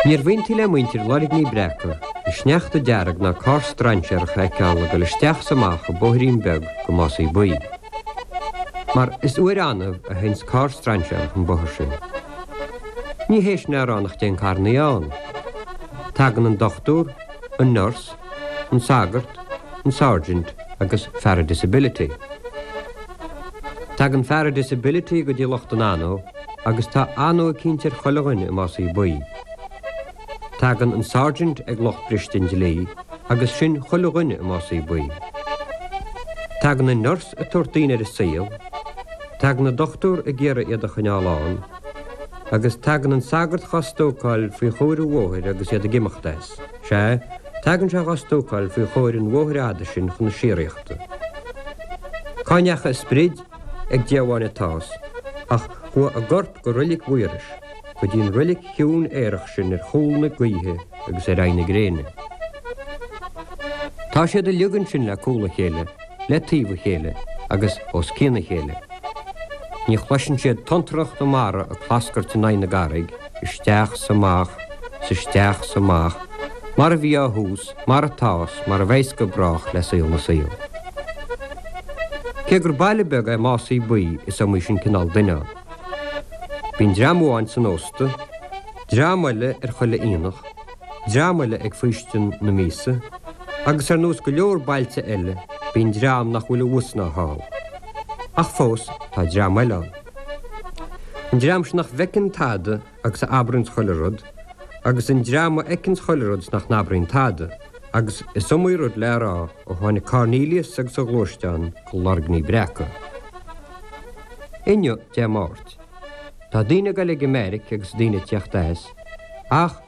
Níorbh iontaí le muintir Loirgní Breaca an sneachta dearg ná carr strainséarach a fheiceáil ag dul isteach is amach an bóithrín beag go Másaí Buí. Mar is uair annamh a théanns carr strainséarach an bóthar sin. Ní hé sin a rá nach dtéann carrannaí ann. Tagann an dochtúr, an nurse, an sagart, an sergeant agus fear an disability. Tagann fear an disability go dtí lucht an anó agus tá anó eicínt ar chuile dhuine i Másaí Buí. Tagann an sergeant ag lucht briste an dlí agus sin chuile dhuine i Másaí Buí. Tagann an nurse ag tabhairt daoine ar an saol, tagann an dochtúir ag iarraidh iad a choinneáil ann, agus tagann an sagart dhá stócáil faoi chomhair an bhóthair agus iad ag imeacht as. Sea, tagann sé dhá stócáil faoi chomhair an bhóthair fhada sin chun na síoraíochta. Cá ndeachaigh a sprid? Ag Dia amháin atá's, ach chuaigh a gcorp go Reilig Mhaorais, go dtí an reilig chiúin aerach sin ar chúl na gaoithe agus ar aghaidh na gréine. Tá siad uilig ansin le cúl a chéile, le taobh a chéile, agus os cionn a chéile. Ní chloiseann siad tonntracha na mara ag clascairt in aghaidh na gcarraig, isteach 's amach 's isteach 's amach mar a bhí ó thús mar atá 's mar a bheas go brách le saol na saol. Cé gur baile beag é Másaí Buí is iomaí sin cineál duine ann. Bíonn dream amháin san ósta, dream eile ar chuile aonach, dream eile ag faoistin na míosa, agus ar nós go leor bailte eile bíonn dream nach bhfuil abhus ná thall. Ach fós tá dream eile ann. An dream seo nach bhfeiceann tada agus a abraíonns chuile rud, agus an dream a fheiceanns chuile rud is nach n-abraíonn tada, agus is iomaí rud le rá ó tháinig Cornelius agus a ghluaisteán go Loirgní Breaca. Inniu, Dé Máirt, tá daoine ag goil ag an mbeairic agus daoine ag tíocht as, ach,